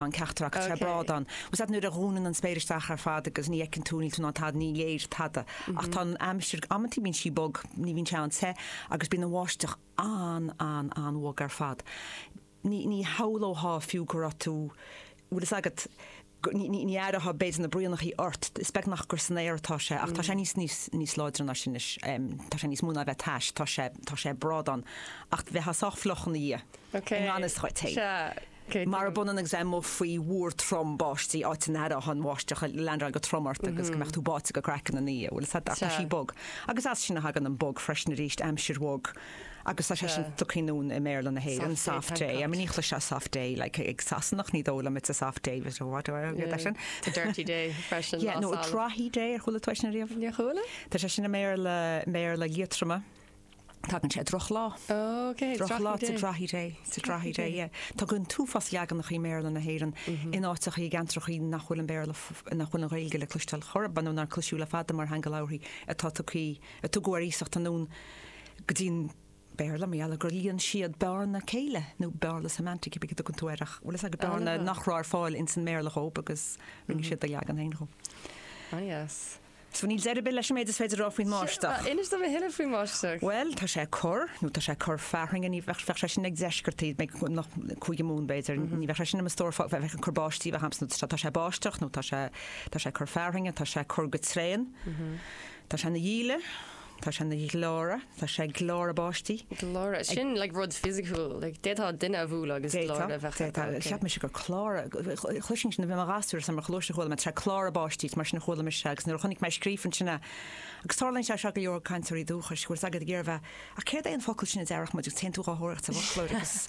an teachtaireacht ar brádán. Is ait nuair a dhúnann an spéir isteach ar fad agus ní fheiceann tú, níl tú in ann tada, ní léir tada. Ach tá an aimsir, amantaí bíonn sí bog, ní bhíonn sé an-te agus bíonn an bháisteach an, an, an-bhog ar fad. Ní, ní shamhlófá fiú go raibh tú, bhfuil fhios agat, ní, ní, ní aireofá b'fhéidir na braonachaí ort, is beag nach gur san aer atá sé ach tá sé níos, níos, níos láidre ná sin anois. Tá sé níos mó ná a bheith tais, tá sé, tá sé ag brádán. Ach bheifeá sách fliuch ina dhiaidh. I ngan fhios dhuit féin. Marab ionann agus é amuigh faoi mhúr trom báistí, áit a n-aireofá an bháisteach ag leaindeáil go trom ort agus go mbeifeá báite go craiceann ina dhiaidh. Bhuel, tá sí bog. Agus as sin a thagann an 'bog' freisin arís, aimsir bhog. Agus tá sé sin, tá's a'd féin i mBéarla na hÉireann, soft day. I mean ní chloisfeá soft day like ag Sasanach, ní dóigh liom it's a soft day but what do I get that sin? It's a dirty day freisin. Yeah, nó a drawky day ar chuala tú é sin riamh? Níor chuala. Tá sé sin i mBéarla, mBéarla Liatroma. Tagann sé ó drochlá. Oh, cé hé? Drochlá. It's a drawky day. It's a drawky day, yeah. Tagann an t-uafás leaganacha i mBéarla na hÉireann in áiteacha i gceantracha nach bhfuil an Béarla, nach bhfuil an Ghaeilge le cloisteáil chor ar bith nó nár cloisteadh le fada mar theanga labhartha atá tugthaí, a tugadh ar iasacht anonn go dtí an Béarla mar gheall ar gur líon siad bearna céille nó bearna semantic, pé bí a dtugann tú air ach, bhuel, is ea, go bearna nach raibh ar fáil ins an mBéarla dhóib agus rinne siad a leagan féin dhó. Ah, yes. Sea, níl deireadh ar bith leis an méid is féidir a rá faoin mbáisteach. Sea, inis dom a thuilleadh faoin mbáisteach. Bhuel, tá sé ag cur, nó tá sé ag cur fearthainne, ní bheadh, bheadh sé sin ag deisceartaigh, Muimhneach, Cúige Mumhan b'fhéidir, ní bheadh sé sin i mo stór, bheadh, bheadh ag cur báistí a bheadh agamsa, nó tá sé ag báisteach, nó tá sé, tá sé ag cur fearthainne, tá sé ag cur go tréan, tá sé ina dhíle. Tá sé ag gleáradh. Tá sé ag gleáradh báistí. Gleáradh. Sin like rud fisiciúil. Like d'fhéadfá duine a bhualadh agus D'fhéadfá, gleáradh a thabhairt dó. d'fhéadfá. Ok. Cheap mise gur cláradh, chloisinn sin, bhí mé i mo ghasúr is mar a chloisinn, chuala mé, tá sé ag cláradh báistí, is mar sin a chuala mise agus nuair a chonaic mé é scríofa ansin a, agus tarlaíonn sé seo go leor ag cainteoirí dúchais, go bhfuil 's a'd, ag iarraidh a bheith, ach céard é an focal sin a déarfadh muid, agus téann tú dhá thóireacht sa bhfoclóir agus.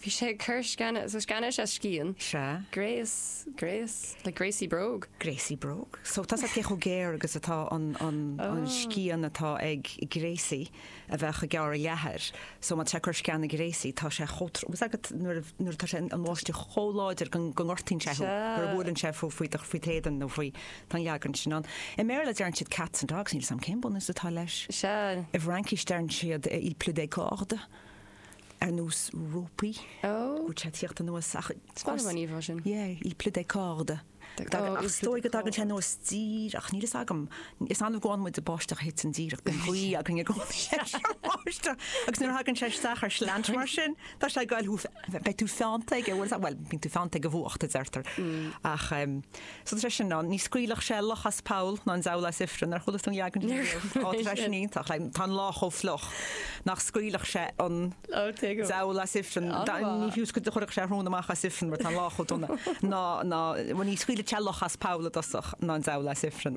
Bhí sé ag cur sceana, so sceana is ea scian. Sea. Gréas, gréas, like gréasaí bróg? Gréasaí bróg. So tá 's a'd cé chomh géar agus atá an, an, an scian atá ag gréasaí a bheadh ag gearradh leathair. So má tá sé ag cur sceana gréasaí tá sé chomh trom, bhfuil 's agat nuair a, nuair atá sé, an bháisteach chomh láidir go, go ngortaíonn sé thú, nuair a bhuaileann sé faoi, faoi do, faoi t'éadan nó faoi, tá an leagan sin ann. I mBéarla deireann siad cats and dogs, níl 's a'm cén bunús atá leis. Sea. I bhFraincis deireann siad il pleut des cordes. ar nós rópaí, ag tíocht anuas, il pleut des cordes, is dóigh go dtagann sé anuas díreach, ach níl fhios agam, is annamh go bhfaigheann muid báisteach a thiteann díreach bíonn gaoth againn i gcónaí leis an mbáisteach agus nuair a thagann sé isteach ar shleaint mar sin, tá sé ag gabháil thú, beidh tú feannta aige, bhuel bíonn tú feannta ag an bhfuacht a deirtear, ach sa tseisiún ní scaoilfeadh sé luch as poll ná an diabhal as ifreann ar chuala tú an leagan sin riamh? Ó, tá sé sin iontach like tá an lá chomh fliuch nach scaoilfeadh sé an Oh, take it. diabhal as ifreann An Da- lá. ní chuirfeadh sé an rún amach as ifreann mar tá an lá chomh dona ná ná bhuel ní scaoilfeadh sé luch as poll i dtosach ná an diabhal as ifreann.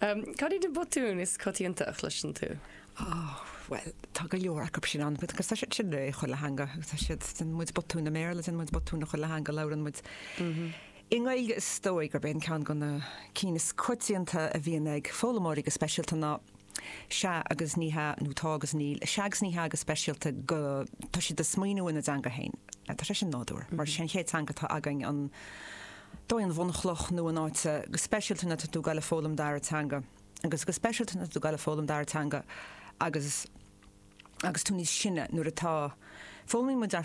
Umm, cad iad na botúin is coitianta a chloiseann tú? Oh, bhuel, tá go leor acu sin ann, agus tá siad sin i chuile theanga, tá siad, déanann muid botúin i mBéarla, déanann muid botúin i chuile theanga, labhrann muid. I nGaeilge is dóigh gurb é an ceann go na cinn is coitianta a bhíonns ag foghlaimeoirí go speisialta ná sea agus ní hea nó tá agus níl. Sea agus ní hea go speisialta go tá siad ag smaoiniú ina dteanga féin. Tá sé sin nádúrtha, mar sin í an chéad teanga atá againn an, dóigh an bhunchloch nó an áit go speisialta má tá tú ag goil ag foghlaim dara teanga agus go speisialta má tá tú ag goil ag foghlaim dara teanga agus agus tú níos sine nuair atá foghlaimíonn muid ar